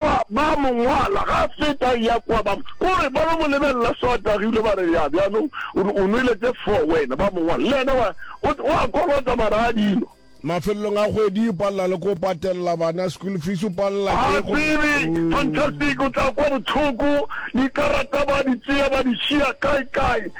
Ba mo ngwala ga a feta a ya kwa, ba o re ba lo mo lebelela so a tagilwe, ba re, Ya, bjanong o re o nwele tše four wena. Ba mo ngwala, le yena wa, o, o a kolota mara a di nwa. Mafelelong a kgwedi o palela le ko patelela bana school fees, o palela Ha ke go. tsebe, fantastic, o tla kwa bohloko, dikarata ba di tšea ba di šiya kae kae.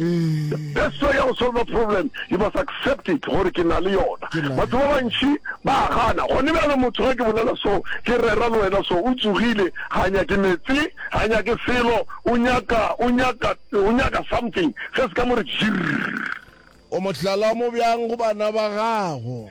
The best way ya go solver problem, you must accept it gore ke na le yona. Batho ba bantši ba a gana. Gone bjalo motho ge ke bolela so, ke rera le wena so, o tsogile, ga a nyake meetse, ga a nyake selo, o nyaka, o nyaka, o nyaka something se se ka mo re jirr. O mohlala mo bjang go bana ba gago?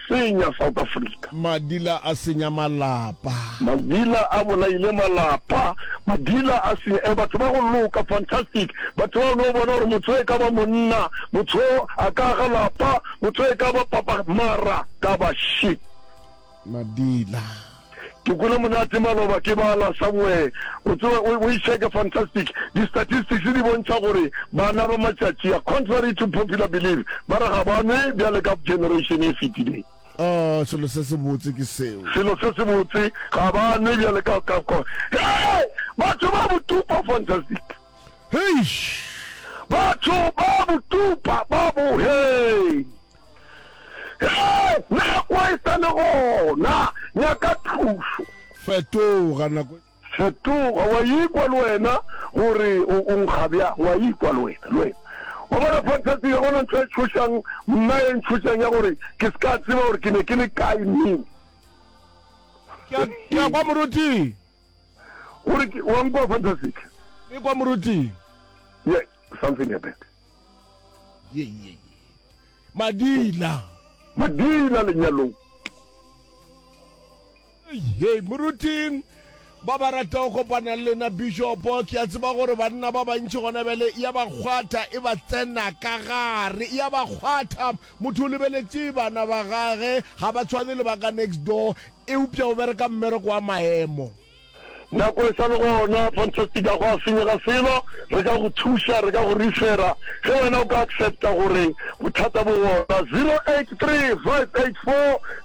senya South Africa. Madila a senya malapa. Madila a bolaile malapa. Madila a senya eh batho ba go loka fantastic batho ba no bona gore motho e ka ba monna motho a ka ga lapa motho e ka ba papa mara ka ba shit. Madila. Ke kwele monate maloba ke bala somewhere o tseba o e check fantastic di statistics di bontšha gore bana ba matšatši a contrary to popular belief ba re ga ba nwe bjale ka generation e fetileng. Oh selo se se botse ke seo. Selo se se botse ga ba nwe bjale ka ka ka hey batho ba botupa fantastic. Heish. Batho ba botupa ba bo hey. Hei! Nako e sa le gona! Nyaka thušo! Fetoga! Nako e. Fetoga! O a ikwa le wena gore o, o nkga bjang? O a ikwa le wena, le wena? Wa bona? Fantastic! Ga go na ntho e tšhošang mna e ntšhošang ya gore ke se ka tseba gore ke ne ke le kae neng. Ke a, ke a kwa moruti. Gore ke, wa nkwa Fantastic? Ke kwa moruti. Yeah, something happened. ye ye ye madila madila lenyalong ye moruting ba ba rata go kopana le lena bishopo ke a tseba gore banna ba bantši gona bjale ya ba kgwatha e ba tsena ka gare ya ba kgwatha motho o lebeletse bana ba gage ga ba tshwane le ba ka next door eupša o bereka mmereko wa maemo Nako e sa le gona. Fantastic a gwa senyega selo, re ka go thuša, re ka go refera ge wena o ka accepta gore bothata bo gona.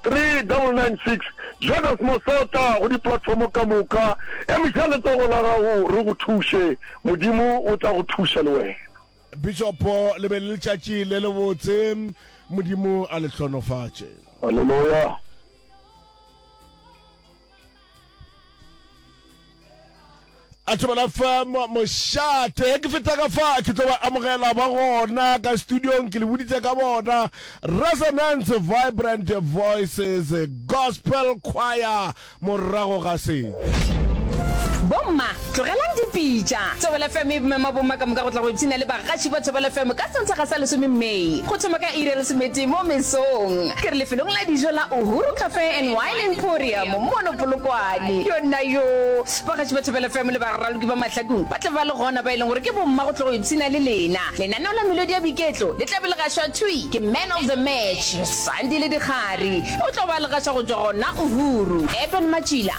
0835843996 Join us Mosota go di platform ka moka, emiša letsogo la gago re go thuše, Modimo o tla go thuša le wena. Bishopo le be le letšatši le le botse, Modimo a le hlonofatše. Haleloya! a tlo bala fa mošate ke feta ka fa ke tlo ba amogela ba gona ka studiong ke le boditse ka bona resonance vibrant voices gospel choir morago ga se bomma Tlogelang dipitša. Thobela FM e mema bomma ka moka go tla go ipshina le bagaši ba Thobela FM ka Sontaga sa lesome May go thoma ka iri ya lesometee mo mesong. Ke re lefelong la dijo la Uhuru Cafe and Wine Emporium mono Polokwane. Yonnayoo! Bagaši ba Thobela FM le baraloki ba mahlakung ba tla ba le gona ba e leng gore ke bomma go tla go ipshina le lena. Lenaneo la melodi ya boiketlo le tla be le gašwa thwi ke Man of the Match, Sandile Dikgari. O tlo ba a le gaša go tšwa gona Uhuru. Eben Matšila,